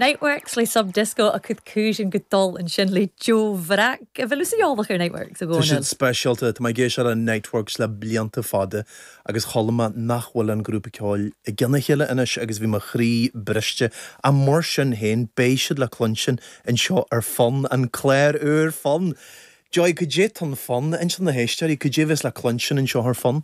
Niteworks le Sub Disco a cud cúiseann go dul ansin le Joe Bhreac a bhfuil tusa eolach ar Niteworks a Tá siad Dhónaill. speisialta, tá mé ag éisteacht le Niteworks le blianta fada agus chuala mé nach bhfuil an grúpa ceoil i gcionn a chéile anois agus bhí mo chroí briste, ach mar sin féin beidh siad le cluinstin anseo ar Fonn, an clár úr Fonn! Joy, cad é atá in Fonn? Inis do na héisteoirí, cad é a bheas le cluinstin anseo ar Fonn?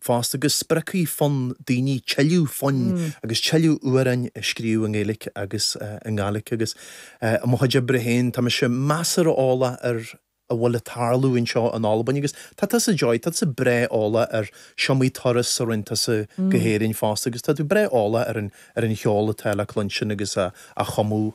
fosta go spreagfaidh Fonn daoine tuilleadh foinn agus tuilleadh amhráin a scríobh i nGaeilge agus i nGàidhlig agus, i mo chuid oibre féin, tá mise measartha eolach ar a bhfuil ag tarlú anseo in Albain agus tá tusa, Joy, tá tusa breá eolach ar is iomaí turas a rinn tusa go hÉirinn fosta agus tá tú breá eolach ar an cheol atá le cluinstin agus á chumadh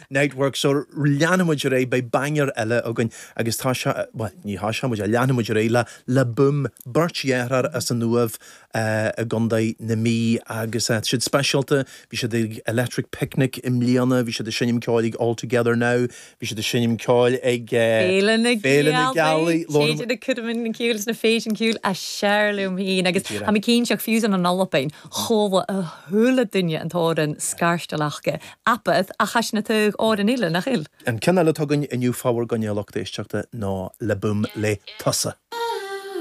Niteworks, so leanfaidh muid ar aghaidh, beidh baingear eile againn agus tá sé, bhuel, ní tá sé, muid a, leanfaidh muid ar aghaidh le Le Boom, beirt dheartháir as an Uaimh i gContae na Mí agus siad speisialta, bhí siad ag Electric Picnic i mbliana, bhí siad ag seinm ceoil ag All Together Now, bhí siad ag seinm ceoil ag Féile na Féile na Gealaí, Gealaí, labhair Téid muid. na Cúraimín na Cúil is na Féilte Cúile, a share liom féin Go agus tá díreach. mé cinnte ach fiú ansin in Albain, chuala a chuile duine an t-amhrán s'acu Australia Apath, Ach thaitin a tuigh óir an fhile, nach fhill? An ceann eile atá againn inniu fá bhur gcoinne, a lucht éisteachta ná Le Boom le tusa.